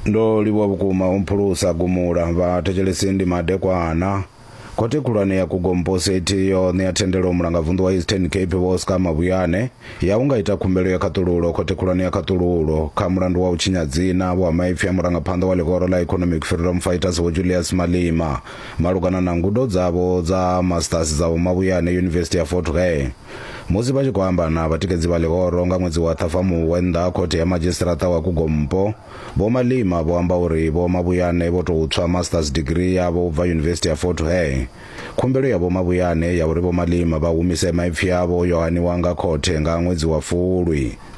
ndo livhuwa vhukuma u mphulusa gumula vha thetshelesi ndi madekwana khothe khulwane ya kugomposeti yo ṋea thendelo mulangavunḓu wa eastern cape vho oscar mabuyane ya u nga ita khumbelo ya khaṱululo khothe khulwane ya khaṱululo kha mulandu wa u tshinya dzina vho ha maipfi a murangaphanḓa wa ḽihoro ḽa economic freedom fighters vho julius malima malugana na ngudo dzavho dza masters dza vho mabuyane yunivesithi ya fort hare Musi vha tshi khou amba na vhatikedzi vha ḽihoro nga ṅwedzi wa Ṱhafamuhwe nnḓa ha khothe ya madzhisiṱiraṱa wa Kugompo, Vho Malema vho amba uri Vho Mabuyane vho tou tswa Masters Degree yavho u bva Yunivesithi ya Fort Hare. Khumbelo ya Vho Mabuyane ya uri Vho Malema vha humise maipfi avho yo haniwa nga khothe nga ṅwedzi wa Fulwi.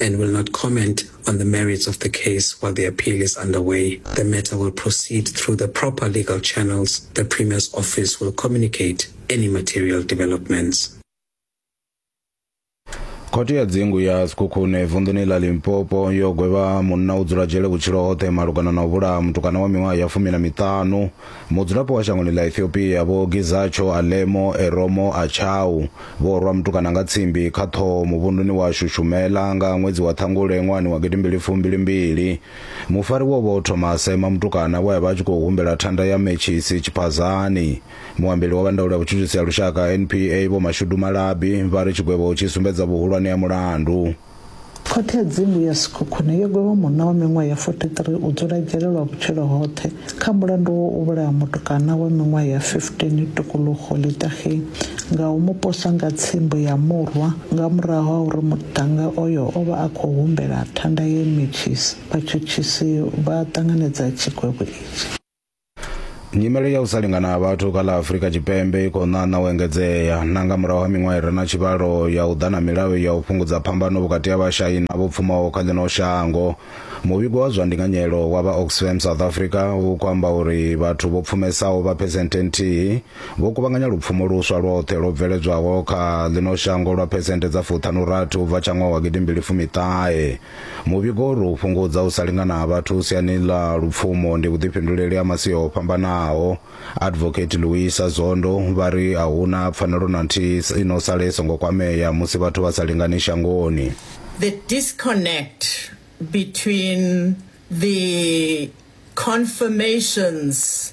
and will not comment on the merits of the case while the appeal is underway. The matter will proceed through the proper legal channels. The Premier's office will communicate any material developments. khothe ya dzingu ya sekhukhune vunḓuni ḽa limpopo yo gwevha munna u dzula dzhele vhutshilo hoṱhe malugana na u vhulaha mutukana wa miṅwaha ya fumi na miṱanu Mudzulapo wa shangoni ḽa Ethiopia Vho Gizacho Alemo Eromo Achau vho rwa mutukana nga tsimbi kha ṱhoho muvhunduni wa Shushumela nga ṅwedzi wa Ṱhangule ṅwahani wa gidimbili fumbili mbili. Mufariwa o vha o thoma a sema mutukana we a vha a tshi khou humbela thanda ya mentshisi tshiphazani. Muambeli wa vha ndaulo ya vhutshutshisi ha lushaka, NPA, Vho Mashudu Malabi vha ri tshigwevho tshi sumbedza vhuhulwane ha mulandu. Khothe ya Dzimu ya Sekhukhune yo gwevha munna wa miṅwaha ya 43 u dzula dzhele lwa vhutshilo hoṱhe kha mulandu wa u vhulaha mutukana wa miṅwaha ya 15 Tukuluxo Litaxi nga u mu posa nga tsimbo ya murwa nga murahu ha uri muṱhannga oyo o vha a khou humbela thanda ye metshisi vhatshutshisi vha ṱanganedza tshikwevho itshi. nyimele ya u sa lingana ha vhathu kha ḽa afurika tshipembe i khou ṋaṋa u engedzea na nga murahu ha miṅwaha i re na tshivhalo ya u ḓa na milayo ya u fhungudza phambano vhukati ha vhashai na vho pfumaho kha ḽino shango muvhigo wa zwa ndinganyelo wa vha oxfam south africa u khou amba uri vhathu vho pfumesaho vha phesenthe nthihi vho kuvhanganya lupfumo luswa lwoṱhe lwo bveledzwaho kha ḽino shango lwa phesenthe dza fuṱhanurathi u bva tsha ṅwaha wa gidimbili fumiṱahe Muvhigo uri u fhungudza u sa lingana ha vhathu siani ḽa lupfumo ndi vhuḓifhinduleli ha masia o fhambanaho. Advocate Luisa Zondo vha ri a huna pfanelo na nthihi i no sala i songo kwamea musi vhathu vha sa lingani shangoni. The disconnect between the confirmations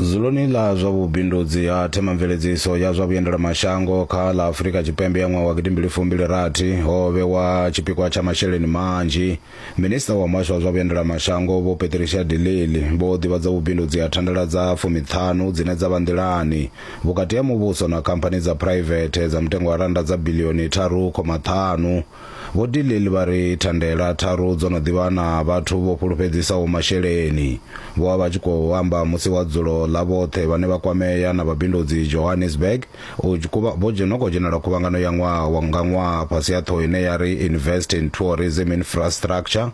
Zuluni ḽa zwa vhubindudzi ha themamveledziso ya zwa vhuendelamashango kha ḽa Afurika Tshipembe ya ṅwaha wa gidimbili fumbili rathi ho vhewa tshipikwa tsha masheleni manzhi. Minisiṱa wa muhasho wa zwa vhuendelamashango Vho Patricia de Lille vho ḓivhadza vhubindudzi ha thandela dza fumiṱhanu dzine dza vha nḓilani vhukati ha muvhuso na khamphani dza phuraivethe dza mutengo wa rannda dza biḽioni tharu khoma ṱhanu. Vho de Lille vha ri thandela tharu dzo no ḓivha na vhathu vho fhulufhedzisaho masheleni. Vho vha vha tshi khou amba musi wa dzulo ḽa vhoṱhe vhane vha kwamea na vhabindudzi Johannesburg, u kuvha, vho dzhena khou dzhenela khuvhangano ya ṅwaha nga ṅwaha fhasi ha ṱhoho ine ya ri Invest in Tourism Infrastructure,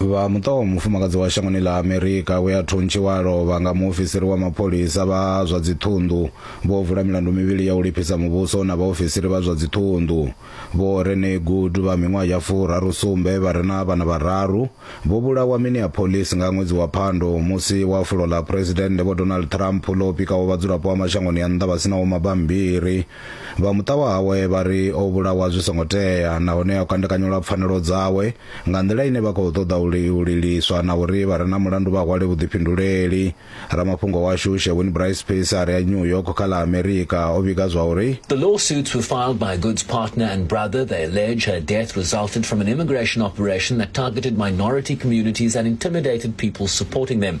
vha muṱa wa mufumakadzi wa shangoni ḽa amerika we a thuntshiwa lovha nga muofisiri wa mapholisa vha zwa dziṱhunḓu vho vula milandu mivhili ya u lifhisa muvhuso na vhaofisiri vha zwa dziṱhunḓu vho rene good vha miṅwaha ya furaru sumbe vha re na vhana vhararu vho vhulawa minneapolis nga ṅwedzi wa phando musi wa fulo ḽa phuresidennde vho donald trump ḽo pikaho vhadzulapo vha mashangoni a nnḓa vha sinaho mabambiri Vha muṱa wawe vha ri o vhulawa zwi songo tea nahone o kandekanyelwa pfanelo dzawe nga nḓila ine vha khou ṱoḓa u li- u liliswa na uri vha re na mulandu vha hwale vhuḓifhinduleli. Ramafhungo washu Sherwin Bryce Peace a re a New York kha ḽa Amerika o vhiga zwa uri, The lawsuits were filed by Good's partner and brother. They allege her death resulted from an immigration operation that targeted minority communities and intimidated people supporting them.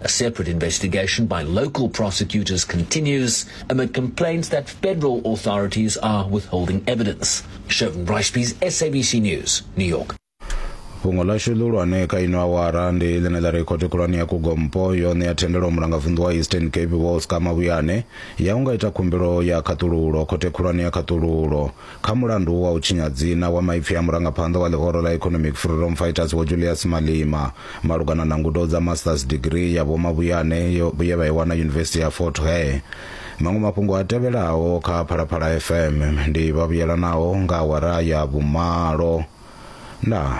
A separate investigation by local prosecutors continues amid complaints that federal authorities are withholding evidence. Shervin Ricebees, SABC News, New York. fhungo ḽashu ḽihulwane kha ino awara ndi ḽine ḽa ri khothe khulwane ya kugompo yo ṋea thendelo mulangavunḓu wa eastern cape vho ska mavhuyane ya u nga ita khumbelo ya khaṱululo khothe khulwane ya khaṱululo Kha mulandu wa u tshinya dzina wa maipfi a murangaphanḓa wa ḽihoro ḽa Economic Freedom Fighters Vho Julius Malema malugana na ngudo dza Masters Degree ya Vho Mabuyane yo ye vha i wana Yunivesithi ya Fort Hare. Maṅwe mafhungo a tevhelaho kha Phalaphala FM ndi vha vhuyelanaho nga awara ya vhumalo. Ndaa.